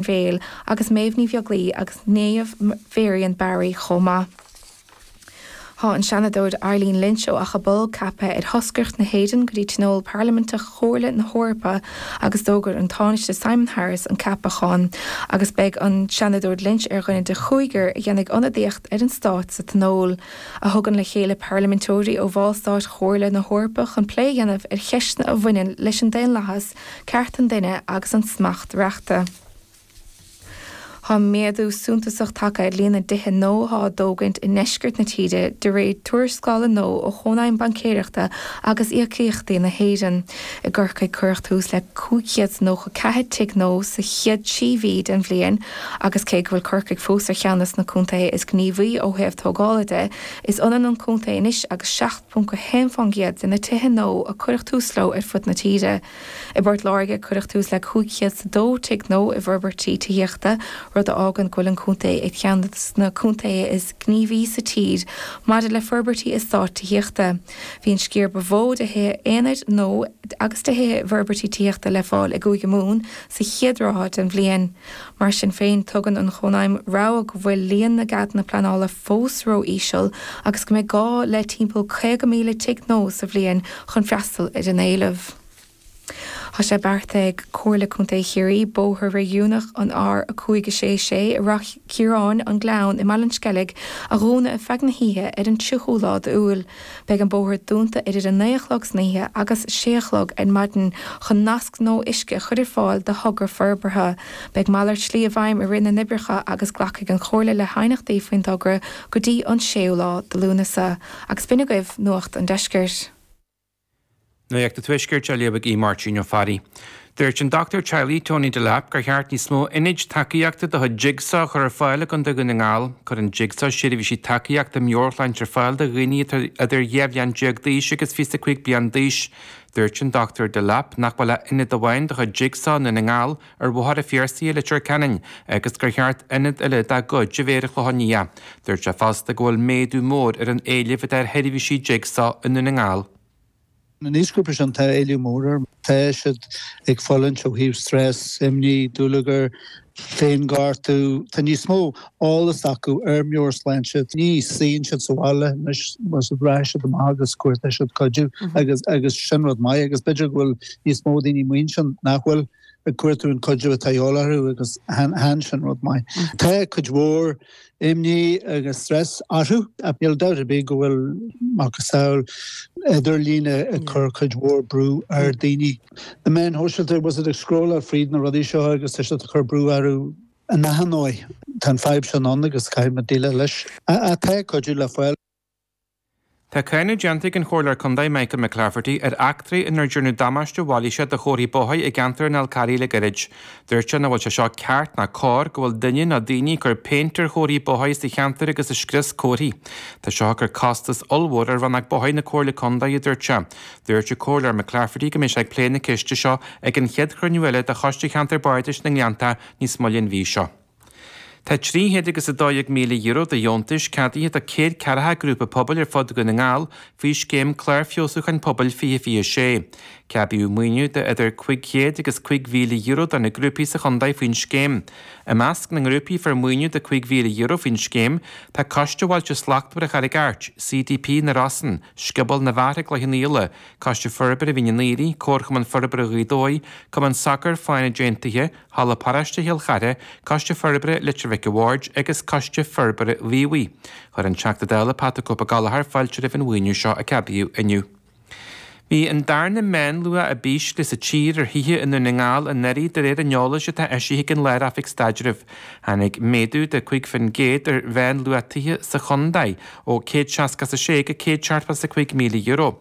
Bhéal agus Méabh Ní Bheaglaoich agus Niamh Varian Barry chomh maith. Tá an Seanadóir Eileen Lynch ó Achadh Bolg ceaptha ar thoscaireacht na hÉireann go dtí Tionól Parlaiminteach Chomhairle na hEorpa agus d'fhógair an Tánaiste Simon Harris an ceapachán agus beidh an Seanadóir Lynch ar dhuine de chúigear a dhéanfaidh ionadaíocht ar an Stát sa Tionól, a thugann le chéile parlaiminteoirí ó bhallstáit Chomhairle na hEorpa chun plé a dhéanamh ar cheisteanna a bhaineann leis an daonlathas Cearta an duine agus an smacht reachta Tá méadú suntasach tagtha ar líon na dtithe nua atá á dtógaint i ndeisceart na tíre, de réir tuarascála nua ó Chónaidhm Baincéireachta agus Íocaíochtaí na hÉireann. I gCorcaigh cuireadh tús le 594 tigh nua sa chéad trí mhí den bhliain agus cé go bhfuil Corcaigh fós ar cheann des na contaetha is gníomhaí ó thaobh tógála de, is ionann an contae anois agus .1% de na tithe nua a cuireadh tús leo ar fud na tíre. I bPort Láirge cuireadh tús le cúig chéad 's a dó tigh nua i bhforbairtí tithíochta, rud a fhágann go bhfuil an contae ar cheann des na contaetha is gníomhaí sa tír maidir le forbairtí eastáit tithíochta. Bhí an sciar ba mhó de thithe aonair nua agus de thithe i bhforbairtí tithíochta le fáil i gCúige Mumhan sa chéad ráithe den bhliain. Mar sin féin, tugann an Chónaidhm rabhadh go bhfuil líon na gceadanna pleanála fós ró-íseal agus go mbeidh gá le timpeall 50,000 tigh nua sa bhliain chun freastal ar an éileamh. Tá sé beartaithe ag Comhairle Contae Chiarraí bóthar réigiúnach an R566 i Ráth Chiaráin, An Gleann i mBaile an Sceilg a dhúnadh ar feadh na hoíche ar an 30ú lá d'Iúil. Beidh an bóthar dúnta idir 9 a chlog san oíche agus 6 a chlog ar maidin chun nasc nua uisce a chur ar fáil do thogra forbartha. Beidh malairt slí i bhfeidhm i rith na n-oibreacha agus glacfaidh an Chomhairle le haighneachtaí faoin dtogra go dtí an 6ú lá de Lúnasa. Agus b'in agaibh Nuacht an Deiscirt. Nuacht an Tuaiscirt á léamh ag Aodh Máirtín Ó Fearraigh. Dúirt an Doctúir Teaghlaigh Tony Delap gur cheart níos mó Ionaid Tacaíochta de chuid Jigsaw a chur ar fáil i gContae Dhún na nGall. Cuireann Jigsaw seirbhísí tacaíochta meabhairshláinte ar fáil do dhaoine atá idir 12 bhliain d'aois agus 25 bliain d'aois. Dúirt an Doctúir Delap nach bhfuil ach Ionad amháin de chuid Jigsaw i nDún na nGall, ar Bhóthar an Phiarsaigh i Leitir Ceanainn agus gur cheart ionad eile dá gcuid a bheith ar an Chlochán Liath. Dúirt sé fosta go bhfuil méadú mór ar an éileamh atá ar sheirbhísí Jigsaw i nDún na nGall. An aoisghrúpa sin, tá éileamh mór air. Tá siad ag fulaingt ó thaobh stress, imní, dúlagair, féinghortú. Tá níos mó eolas acu ar meabhairshláinte. Ní suíonn siad sa bhaile níos mó, rachaidh siad amach agus cuartóidh siad cuidiú agus sin rud maith agus b'fhéidir go bhfuil níos mó daoine amuigh ansin nach bhfuil. cuir tú an cuidiú atá ag dul orthu agus tá sin rud maith. Tá cuid mhór imní agus stress orthu ach níl dabht ar bith go bhfuil macasamhail idirlín ag cur cuid mhór brú ar daoine. na meáin shóisialta, tá siad ag scrolláil fríd na rudaí seo agus tá siad ag cur brú orthu in achan ndóigh. Tá an fadhb sin ann agus caithfidh muid déileáil leis. Ach tá cuidiú le fáil. Tá cáineadh déanta ag an Chomhairleoir Contae Michael McClafferty ar eachtraí inar dearnadh damáiste mailíseach do chomharthaí bóithre i gceantar an Fhalcarraigh le gairid. Dúirt sé nach bhfuil sé seo ceart ná cóir go bhfuil duine nó daoine ag cur péint ar chomharthaí bóithre sa cheantar agus ag scrios comharthaí. Tá seo ag cur costas ollmhór ar Rannóg Bóithre na Comhairle Contae, a dúirt sé. Dúirt an Comhairleoir McClafferty go mbeidh sé ag plé na ceiste seo ag an chéad chruinniú eile de Choiste Cheantar Bardais na nGleanntá níos moille an mhí seo. Tá trí chéad agus a dó déag míle euro de dheontais ceadaithe do céad ceathair grúpa pobail ar fud Dhún na nGall faoi scéim Clár Feabhsúcháin Pobail 2026. Ceadaíodh maoiniú de idir cuig chéad agus cuig mhíle euro do na grúpaí sa chontae faoin scéim. I measc na ngrúpaí a fuair maoiniú de cuig mhíle euro faoin scéim tá Coiste Bhailte Slachtmhara Charraig Airt, CDP na Rosann, Scioból na bhFear Chloich Cheann Fhaola, Coiste Forbartha Mhín an Aoirigh, Comharchumann Forbartha Ghaoth Dobhair, Cumann Sacair Fánaid Aontaithe, Halla Paráiste Chill Chartha, Coiste Forbartha Leitir Mhic a' Bhaird agus Coiste Forbartha Mhíobhaigh. Chuir an Teachta Dála Pat 'the Cope' Ó Gallachóir fáilte roimh an mhaoiniú seo a ceadaíodh inniu. Bhí an darna meánluach ab ísle sa tír ar thithe i nDún na nGall anuraidh de réir an eolais atá eisithe ag an Lár-Oifig Staidrimh. Tháinig méadú de 5 faoin gcéad ar mheánluach tithe sa chontae ó 160 is 6 go 170 is 5 míle euro.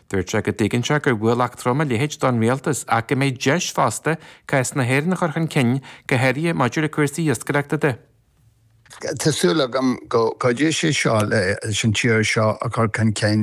Dúirt sé go dtuigeann sé gur ualach trom a leithéid don Rialtas ach go mbeidh deis fosta cás na hÉireann a chur chun cinn go háirithe maidir le cúrsaí iascaireachta de. Tá súil agam go gcuideoidh sé leis an tír seo a chur chun cinn